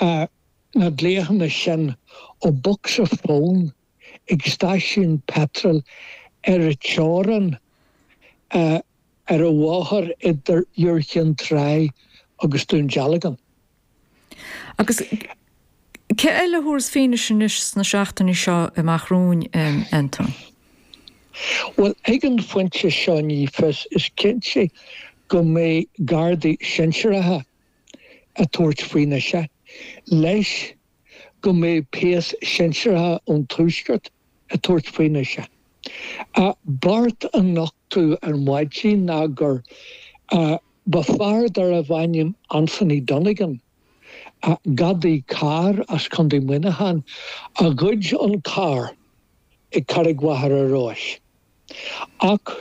Rinneadh na glaochanna sin ó bhocsa fón ag stáisiún peitril ar an teorainn ar an bhóthar idir Iúr Chinn Trá agus Dún Dealgan. Agus cé eile a thabharfas fianaise anois sna seachtainí seo amach romhainn, Anton? Bhuel, ag an phointe seo ní fios. Is cinnte go mbeidh Gardaí sinsearacha ag tabhairt fianaise leis go mbeidh péas sinseartha ón Tuaisceart ag tabhairt fianaise a' beart a nochtadh ar maidin ná gurbh é fear darbh ainm Anthony Donegan, a gadaí cairr as Contae Muineacháin, a ghoid an carr ag Carraig Mhachaire Rois. ach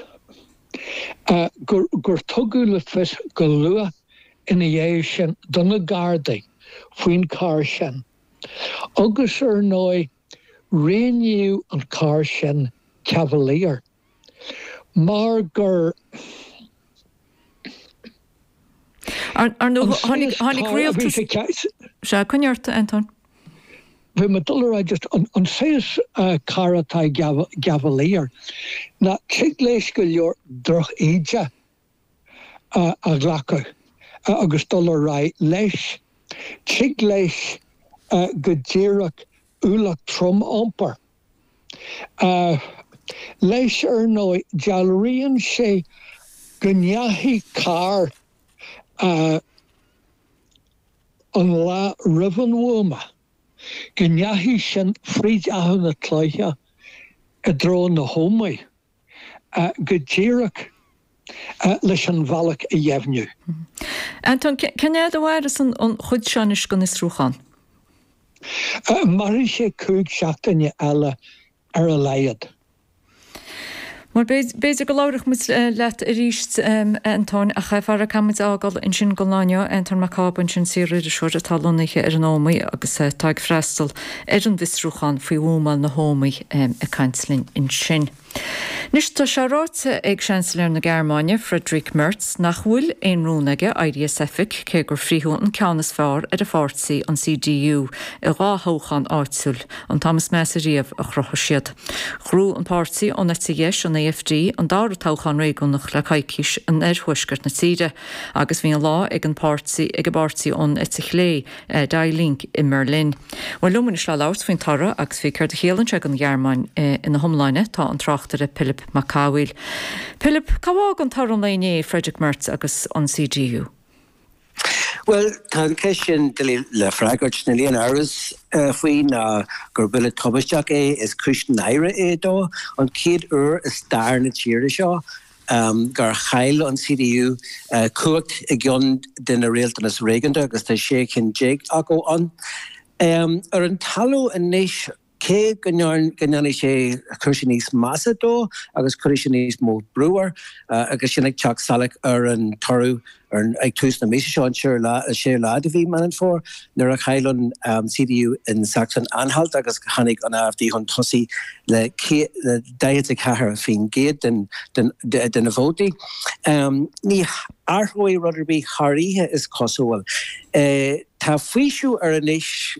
gur tugadh le fios go luath ina dhiaidh sin do na Gardaí faoin charr sin, agus ar ndóigh rianaíodh an carr sin Cavalier mar gur. Ar ndóigh, coinnigh ort, a Antóin. Bhí mé ag dul a rá just an saghas carr atá i gCavalier ná tig leis go leor droch-íde a ghlacadh agus dul ar aghaidh leis. Tig leis go díreach ualach trom a iompar. leis ar ndóigh, dealraíonn sé go ndeachaigh carr an lá roimh an bhuama, go ndeachaigh sin fríd Achadh na Cloiche i dtreo na hÓmaí. Go díreach leis an bhealach a dheimhniú. Anton, cén fhad a mhaireas an chuid seo anois den fhiosrúchán? Mairfidh sé cúig seachtaine eile ar a laghad. Bhuel, b'fhéidir go labhróidh muid leat arís, a Antoin, ach faraor, caithfimid a fhágáil ansin don lá inniu. Anton Mac Cába ansin, saoririseoir atá lonnaithe ar an Ómaigh agus atá ag freastal ar an bhfiosrúchán faoi bhuamáil na hÓmaí ag caint linn ansin. Anois, tá sé ráite ag Seansailéir na Gearmáine, Friedrich Merz, nach bhfuil aon rún aige éirí as oifig, cé gur frítheadh an ceann is fearr ar a pháirtí, an CDU, i dhá thoghchán áitiúil, an t-am is measa riamh a chruthaigh siad. Ghnóthaigh an páirtí ón eite dheis, an AfD, an dara toghchán réigiúnach le coicís in oirthuaisceart na tíre, agus bhí an lá ag an bpáirtí ag an bpáirtí ón eite chlé, Die Linke i mBerlin. Bhuel, liom anois le labhairt faoin toradh agus faoi céard a chiallann sé don Ghearmáin ina hiomláine tá an tráchtaire Pilib Mac Cathmhaoil. Pilib, cá bhfágann toradh an lae inné Friedrich Merz agus an CDU? Bhuel, tá an cheist sin doiligh le freagairt. Níl aon amhras faoi ná gur buille tubaisteach é, is cúis náire é dó, an chéad uair i stair na tíre seo gur chaill an CDU cumhacht i gceann de na rialtanais réigiúnda agus tá sé cinn déag acu ann. Ar an talamh anois, cé go ndéanfaidh sé cúrsaí níos measa dó agus cuirfidh sé níos mó brú air agus sin ag teacht salach ar an toradh, Ag tús na míosa seo, an séú lá de mhí Mheán Fómhair, nuair a chaill an CDU in Sachsen-Anhalt agus tháinig an AfD chun tosaigh le 44% de na vótaí, ní athróidh rud ar bith thar oíche, is cosúil. Tá faoiseamh air anois,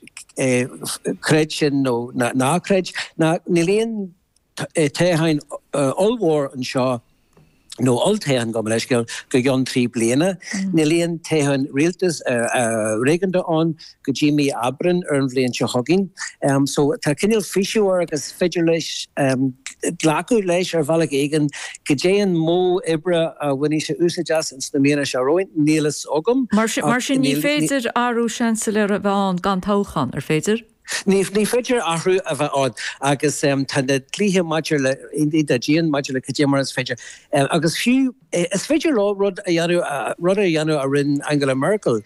creid sin nó ná creid, ná níl aon toghchán ollmhór anseo nó olltoghchán, gabh mo leithscéal, go gceann trí bliana. Níl aon toghchán rialtas réigiúnda ann go dtí mí Aibreán ar an bhliain seo chugainn. So tá cineál faoiseamh air agus is féidir leis glacadh leis ar bhealach éigin. Goidé an modh oibre a bhainfidh sé úsáid as ins na míonna seo romhainn, níl fhios agam. Mar sin, ní féidir athrú Seansailéara a bheith ann gan toghchán, an féidir? Ní féidir athrú a bheith ann agus tá na dlíthe maidir le hiontach dian maidir le cad é mar is féidir agus fiú is féidir leo rud a dhéanamh, rud a dhéanamh a rinne Angela Merkel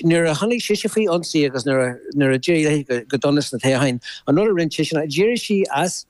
nuair a tháinig sise faoi ionsaí agus nuair a nuair a d'éirigh léi go dona sna toghcháin, an rud a rinne sise ná d'éirigh sí as.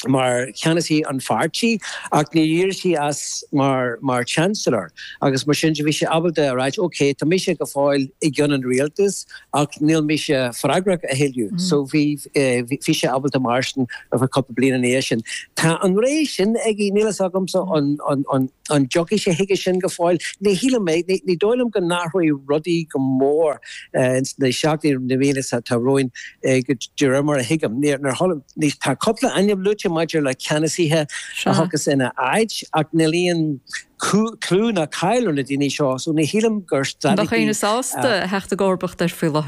mar cheannasaí an pháirtí ach níor éirigh sí as mar Chancellor agus mar sin de bhí sí ábalta a ráit ok tá mise go fóill i gceann an rialtas ach níl mise freagrach a thuilleadh so bhí sí ábalta mairstin ar cúpla bliain ina dhiaidh sin. Tá an rogha sin aige, níl fhios agamsa an dtiocfaidh sé chuige sin go fóill, ní shílim é, ní dóigh liom go n-athróidh rudaí go mór. ins na seachtainí, na míonna seo atá romhainn, de réir mar a thuigim. Níor tharla níos Tá cúpla ainm luaite maidir le ceannasaithe a thiocfas ina áit, ach níl aon clú ná cáil ar na daoine seo, so ní shílim gur dócha go bhfuil éinne sásta a theacht i gcomharbacht air faoi láthair?